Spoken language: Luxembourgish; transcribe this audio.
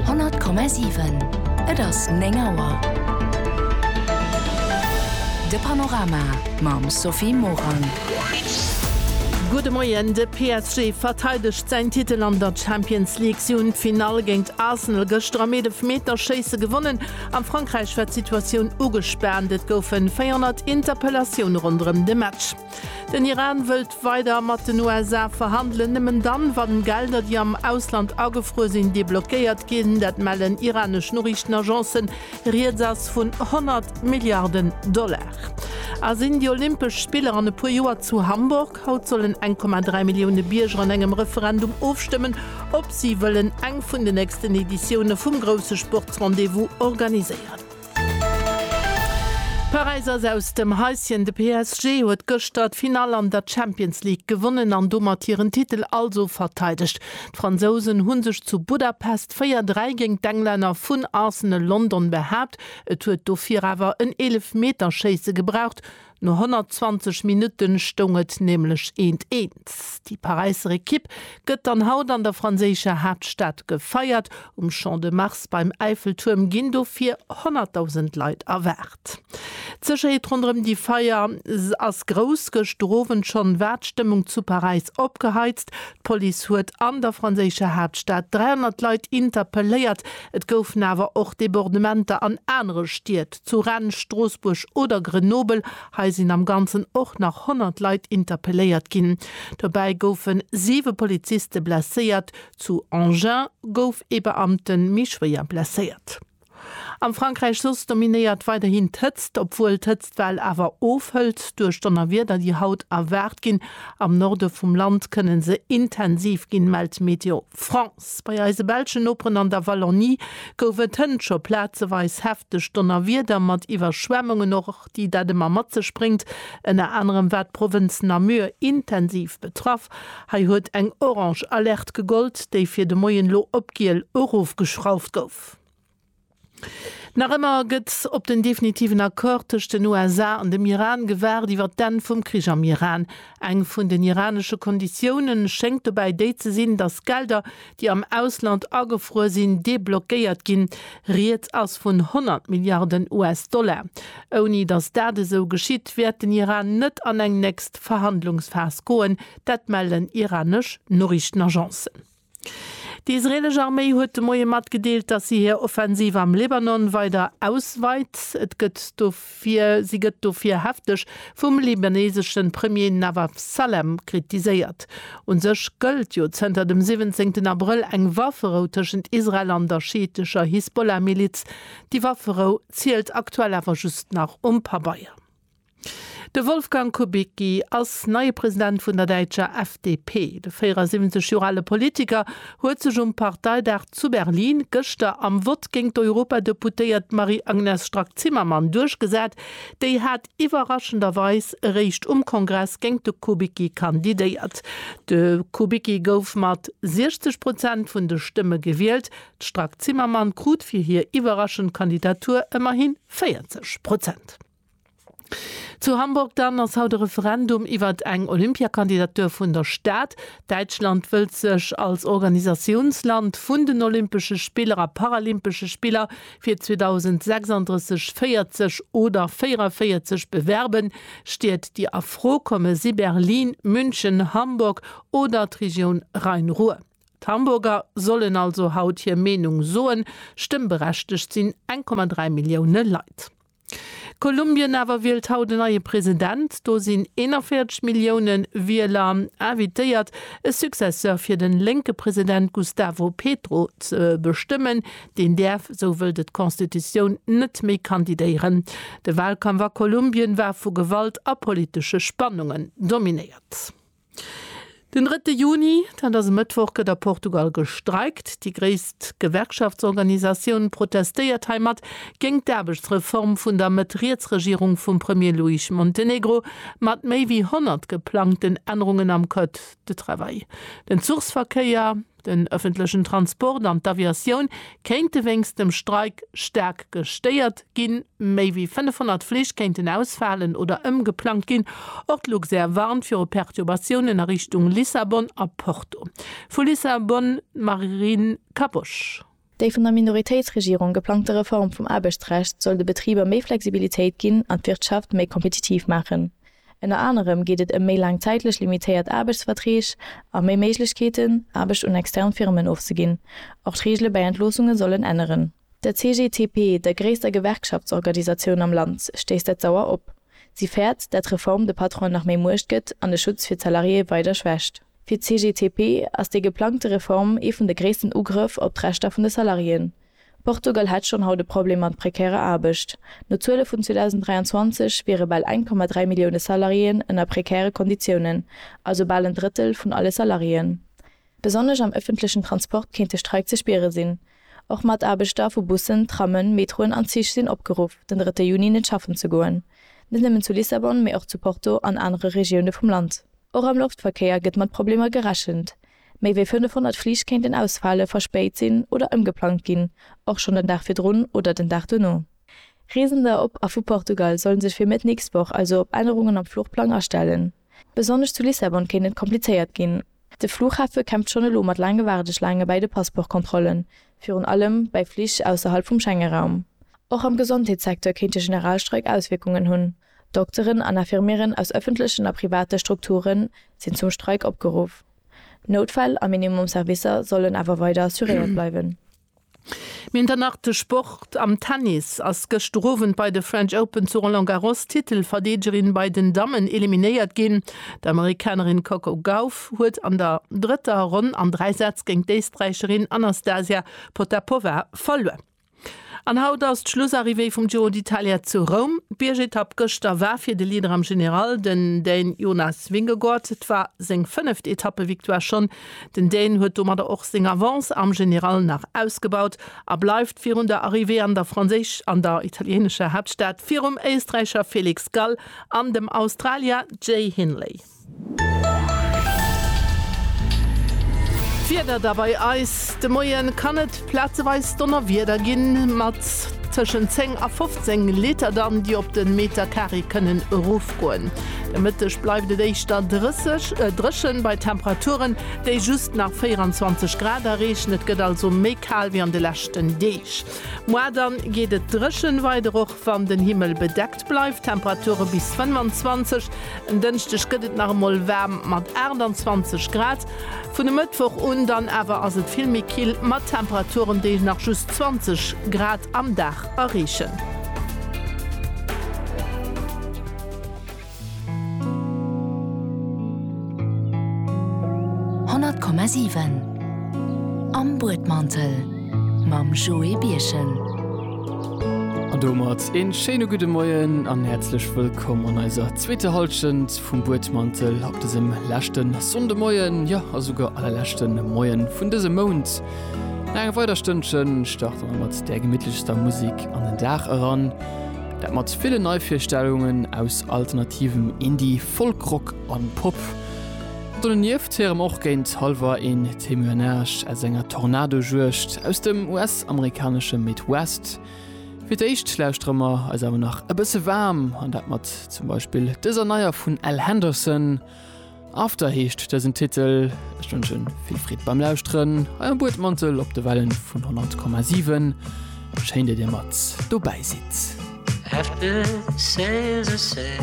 100,7 Et ass 9 Auer. De Panorama mam Sophie Morang. Gudde Moien, De PSG verteidegt säin Titel an der Champions League. Si hunn d'Finall géint Arsenal gëschter am Eelefmeterschéisse gewonnen. A Frankräich war d'Situatioun ugespaant, et goufe 400 Interpellatioune ronderëm de Match. Den Iran wëllt weider mat den USA verhandelen, nëmmen dann, wann Gelder, déi am Ausland agefruer sinn, deblockéiert ginn. Dat mellen iranesch Noriichtenagencen. Rieds ass vun 100 Milliarden Dollar. A sinn déi Olympesch Spiller an e puer Joer zu Hamburg? Haut sollen 1,3 Millioune Bierger an engem Referendum ofstëmmen, ob si wëllen eng vun den nächsten Editioune vum grousse Sportsrendez-vous organiséieren. Paräis ass aus dem Häischen, de PSG huet gëschter d'Finall an der Champions League gewonnen an domat hiren Titel also verteidegt. D'Fransousen hu sech zu Budapest 4, 3 géint d'Englänner vun Arsenal London behaapt. Et huet dofir awer en Eelefmeterschéisse gebraucht, No 120 Minutte stoung et nämlech eent eent. Déi Paräisser Ekipp gëtt dann haut an der franséischer Haaptstad gefeiert. Um Champ de Mars beim Äifeltuerm ginn dofir 100.000 Leit erwaart. D'Sécherheet ronderëm déi Feier ass grouss. Gëschter Owend schonn war d'Stëmmung zu Paräis opgeheizt. D'Police huet an der franséischer Haaptstad 300 Leit interpelléiert. Et goufen awer och Debordementer an anere Stied. Zu Rennes, Stroossbuerg oder Grenoble, hei sinn am Ganzen och nach 100 Leit interpelléiert ginn. Dobäi goufen siwe Poliziste blesséiert. Zu Engins gouf ee Beamte méi schwéier blesséiert. Am Frankräich soss dominéiert weiderhin d'Hëtzt, obwuel d'Hëtztwell awer ofhëlt duerch Donnerwieder, déi haut erwaart ginn. Am Norde vum Land kënne se intensiv ginn, mellt Météo France, Bei eise belschen Noperen an der Wallonie gouf et hënt scho plazeweis hefteg Donnerwieder mat Iwwerschwemmungen, och déi dat ëmmer mat sech bréngt. Ënner anerem war d'Provënz Namur intensiv betraff. Hei huet eng orange Alerte gegollt, déi fir de Moien elo op giel erofgeschrauft gouf. Nach ëmmer gëtt op den definitiven Accord tëscht den USA an dem Iran gewaart iwwer d'Enn vum Krich am Iran. Eng vun den iranesche Konditioune schéngt dobäi déi ze sinn, datt Gelder, déi am Ausland agefruer sinn, deblockéiert ginn. Rieds ass vun 100 Milliarden US-Dollar. Ouni datt dat esou geschitt, wäert den Iran net an eng nächst Verhandlungsphas goen. Dat mellen iranesch Noriichtenagencen. Déi israeelesch Arméi huet de Moie matgedeelt, datt si hir Offensiv am Libanon weider ausweit. Si gëtt dofir hefteg vum libaneesesche Premier Nawaf Salem kritiséiert. U sech gëllt jo zënter dem 17 Abrëll eng Wafferou tëschent Israel an der schiittescher Hisbollah-Miliz. Déi Wafferou zielt aktuell awer just nach um Pabeier. De Wolfgang Kubicki ass neie President vun der däitscher FDP. De 74 Joer ale Politiker huet sech um Parteidag zu Berlin gëschter am Vott géint d'Europadeputéiert Marie-Agnes Strack-Zimmermann duerchgesat. Déi hat iwwerraschenderweis eréischt um Kongress géint de Kubicki kandidéiert. De Kubicki gouf mat 60 Prozent vun de Stëmme gewielt. D'Strack-Zimmermann krut fir hir iwwerraschend Kandidatur ëmmerhi 40 Prozent. Zu Hamburg dann ass haut e Referendum iwwert eng Olympiakandidatur vun der Stad. Däitschland wëllt sech als Organisatiounsland vun den Olympesche Spiller a Paralympesche Spiller fir 2036, 40 oder 44 bewerben. Stied, déi a Fro komme si Berlin, München, Hamburg oder d'Regioun Rhein-Ruhr. D'Hamburger sollen also haut hir Meenung soen. Stëmmberechtegt sinn 1,3 Millioune Leit. Kolumbien awer wielt haut en neie President. Do sinn 41 Millioune Wieler invitéiert, e Successeur fir de lénke President Gustavo Petro ze bestëmmen. Deen däerf, esou wëllt et d'Constitutioun, net méi kandidéieren. De Walkampf a Kolumbien war vu Gewalt a politesche Spannungen dominéiert. Den drëtte Juni, dat ass e Mëttwoch, gëtt a Portugal gestreikt. Déi gréisst Gewerkschaftsorganisatioun protestéiert heimat géingt d'Aarbechtsreform vun der Mëtt-Riets-Regierung vum Premier Luis Montenegro mat méi wéi 100 geplangten Ännerungen am Code de travail, den Zuchsverkéier, Den ëffentlechen Transport an d'Aviatioun kéinte wéinst dem Streik staark gestéiert ginn. Méi wéi 500 Flich kéinten ausfalen oder ëmgeplangt ginn. Och d'Luxair warnt viru Perturbatiounen a Richtung Lissabon a Porto. Vu Lissabon d'Marine Caboche. Déi vun der Minoritéitsregierung geplangte Reform vum Aarbechtsrecht soll de Betriber méi Flexibilitéit ginn an d'Wirtschaft méi kompetitiv maachen. Ënner anerem geet et ëm méi laang zäitlech limitéiert Aarbechtsverträg a méi Méiglechkeeten, Aarbecht un extern Firmen ofzeginn. Och d'Reegele bäi Entloossungen sollen änneren. Der CGTP, der gréisster Gewerkschaftsorganisatioun am Land, stéisst dat sauer op. Si fäert, dat d'Reform de Patronen nach méi Muecht gëtt an de Schutz fir d'Salariéë weider schwächt. Fir d'CGTP ass déi geplangte Reform ee vun de gréissten Ugrëff op d'Rechter vun de Salariéen. Portugal hätt schonn haut e Problem mat prekärer Aarbecht. No Zuele vun 2023 wiere bal 1,3 Millioune Salariéen ënner prekäre Konditiounen, also bal en Drëttel vun alle Salariéen. Besonnesch am ëffentlechen Transport kéint de Streik ze spiere sinn. Och Mataarbechter vu Bussen, Trammen, Metroen an Zich sinn opgeruff, den drëtte Juni net schaffen ze goen. Net nëmmen zu Lissabon, mee och zu Porto an anere Regioune vum Land. Och am Loftverkéier gëtt mat Problemer gerechent. Méi wéi 500 Flich kéinten ausfale, verspéit sinn oder ëmgeplangt ginn, och schonn den Dag virdrun oder den Dag duerno. Reesender op a vu Portugal sollen sech fir Mëtt d'nächst Woch also op Ännerungen am Fluchplang astellen. Besonnesch zu Lissabon kéint et komplizéiert ginn. De Fluchhafe kämpft schonn elo mat laange Waardeschlaange bäi de Passportkontrollen, virun allem bäi Flich ausserhalb vum Schengeraum. Och am Gesondheetssecteur kéint de Generalstreik Auswierkungen hunn. Dokteren an Infirmieren aus ëffentlechen a private Strukture sinn zum Streik opgeruff. Noutfäll a Minimum Servicer sollen awer weider assuréiert bleiwen. Minternach de Sport, Am Tennis ass gëschter Owend bei de French Open zu Roland Garros d'Titelverdeegerin bei den Dammen eliminéiert ginn. D'Amerikanerin Coco Gauff huet an der drëtter Ronn an dräi Sätz géint d'Éisträicherin Anastasia Potapova verluer. An haut ass d'Schlussarrivée vum Giro d'Italia zu Roum. D'Biergetapp gëschter war fir de Leader am General, den Dän Jonas Vingegaard. Et war seng fënneft Etappevictoire schonn. Den Dän huet domadder och seng Avance am General nach ausgebaut a bleift virun der Arrivée an der italieenescher Haaptstad virum Éisträicher Felix Gall an dem Australier Jay Hindley. D'Wieder da bei eis, De Moie kann et plazeweis Donnerwieder ginn, mat tëschent 10 a 15 Liter dann, déi op de Meterkaree kënnen erofgoen. De Mëtteg bleift et éischter dréchen, bei Temperaturen, déi just nach 24 Grad erreechen. Et gëtt also méi kal wéi an de leschten Deeg. Moar dann geet et dréchen weider, och wann den Himmel bedeckt. Et bleift Temperature bis 25, en Dënschdeg gëtt et nach emol waarm mat 28 Grad. Vun e Mëttwoch un dann awer ass et vill méi kill mat Temperaturen, déi nach just 20 Grad am Dag erreechen. Honnert Komma siwen Am Buedmantel mam Joé Birchen. An domat een schéine gudde Moien an häerzlech wëllkomm an eiser zweeter Halschent vum Buedmantel op dësem leschten Sonndemoien, jo a souguer allerleschten Moien vun dësem Mount. No enger weider Stënnchen starten mer mat där gemittlechster Musik an den Dag eran, dat mat villen Neivirstellungen aus alternativem Indie, Folkrock an Pop. Donieft héiere mer och géint halwer een Témoignage aus enger Tornadojuegd aus dem US. US-amerikanesche Midwest. Fir d'éischt lauschtere mer eis awer nach e bësse waarm an dat mat zum Beispill dëser neier vun Al Henderson. After heescht dësen Titel. Ech wënschen vill Freed beim Lauschteren, hei am Buedmantel op de Wellen vun 100,7. Schéin, datt Dir mat dobäi sidd. After sales are said.